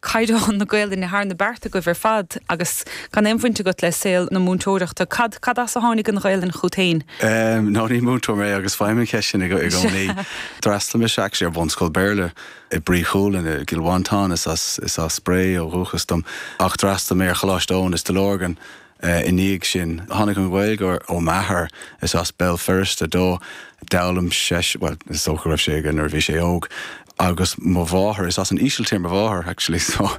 caighdeán na Gaoluinne thar na bearta agaibh ar fad agus gan aon bhaint agat le saol na múinteoireachta. Cad, cad as a tháinig an Ghaoluinn chugat féin? Nó ní múinteoir mé agus faighim an cheist sin i gcónaí. D'fhreastail mise actually ar bhunscoil Béarla i Brí Chualann i gCill Mhantáin, is as, is as Bré ó dhúchas dom ach d'fhreastail mé ar Choláiste Eoin i Stigh Lorgan I ndiaidh sin, tháinig an Ghaeilge ó m'athair, is as Béal Feirste dó, d'fhoghlaim seisean, bhuel, is dócha go raibh sé aige nuair a bhí sé óg, agus mo mháthair, is as an Ísiltír mo mháthair, actually, so,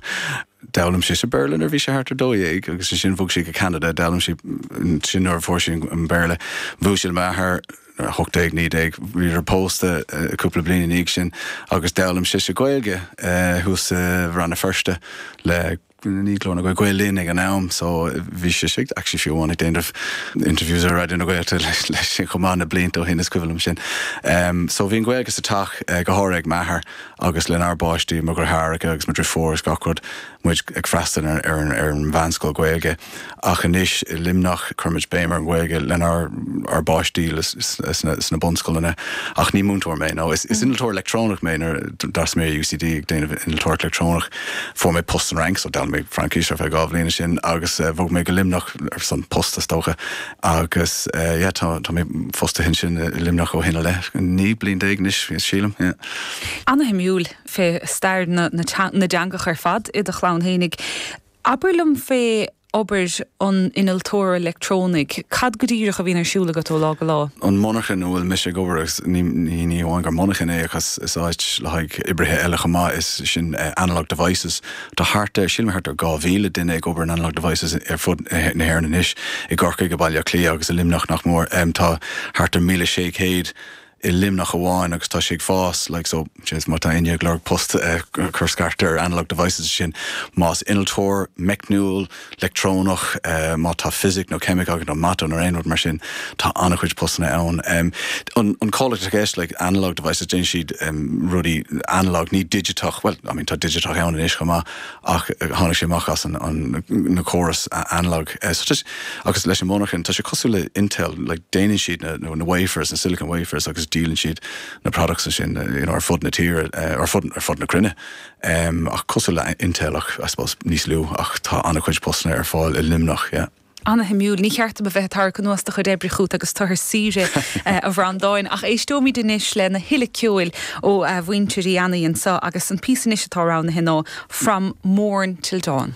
d'fhoghlaim sise Béarla nuair a bhí sé thart ar dó dhéag, agus ansin bhog sí go Ceanada, d'fhoghlaim sí, ansin nuair a fuair sí an Béarla, bhuail sí le m'athair, nuair a, hocht déag, naoi déag, bhíodar pósta cúpla bliain i ndiaidh sin, agus d'fhoghlaim sise Gaeilge thuas i Rann na Feirste le. ní glór na Gaeilge Gael Linn ag an am so bhí sí ag actually fiú amháin ag déanamh interviews ar Raidió na Gaeltachta leis leis sin chomh maith na blianta ó shin is cuimhin liom sin. Em so bhí an Ghaeilge sa teach eh, go háirithe ag m'athair agus lenár bpáistí, mo dheartháireacha agus mo dheirfiúr is gach rud, muid ag freastal ar ar an ar an mheánscoil Ghaeilge. Ach anois i Luimneach cuirimid béim ar an Ghaeilge lenár bpáistí sna bunscoileanna. Ach ní múinteoir mé. Nó is innealtóir leictreonach mé. Nuair a d'fhreastail mé ar UCD ag déanamh innealtóireacht leictreonach fuair mé post san Fhrainc, so d'fhoghlaim mé Fraincis ar feadh dhá bhliain ansin agus bhog mé go Luimneach ar son post is dócha. Agus yeah, tá mé fostaithe ansin i Luimneach ó shin i leith, 19 bliain anois sílim, yeah. Ana-shuimiúil, fiú stair na dteangacha ar fad i do chlann fhéinig. Abair liom fé obair an innealtóra leictreonaigh. Cad go díreach a bhíonn ar siúl agat ó lá go lá? An monarchan ina bhfuil mise ag obair, agus ní hamháin gur monarchan é ach is áit le haghaidh oibrithe eile chomh maith, is sin Analog Devices. Tá thart ar, sílim thart ar dhá mhíle duine ag obair in Analog Devices ar fud na hÉireann anois, i gCorcaigh, i Baile Átha Cliath agus i Luimneach ach go mór. Tá thart ar mhíle sé chéad. i Luimneach amháin agus tá sé ag fás like so jeez má tá éinne ag lorg post eh cur scairt ar Analog Devices is sin más innealtóir meicniúil, leictreonach eh má tá fisic nó ceimic agat nó mata nó aon rud mar sin tá an-chuid postanna ann. Em an an comhlacht atá i gceist like Analog Devices déanann siad em rudaí analog ní digiteach bhuel I mean tá digiteach ann anois chomh maith ach tháinig sé amach as an gcóras analog agus leis an monarchan, tá sé cosúil le Intel, déanann siad na wafers, na silicon wafers agus díolann siad na products ansin ar fud na tíre, ar fud na cruinne ach cosúil le Intel ach I suppose níos lú ach tá an-chuid postanna ar fáil i Luimneach yeah. Ana-shuimiúil. Ní cheart dom a bheith ag tarrac anuas do chuid oibre chút agus tú ar saoire, a Bhreandáin, ach éisteoimid anois lena thuilleadh ceoil ó mhuintir Uí Annaidh anseo agus an píosa anois atá roghnaithe ná From Morn Till Dawn.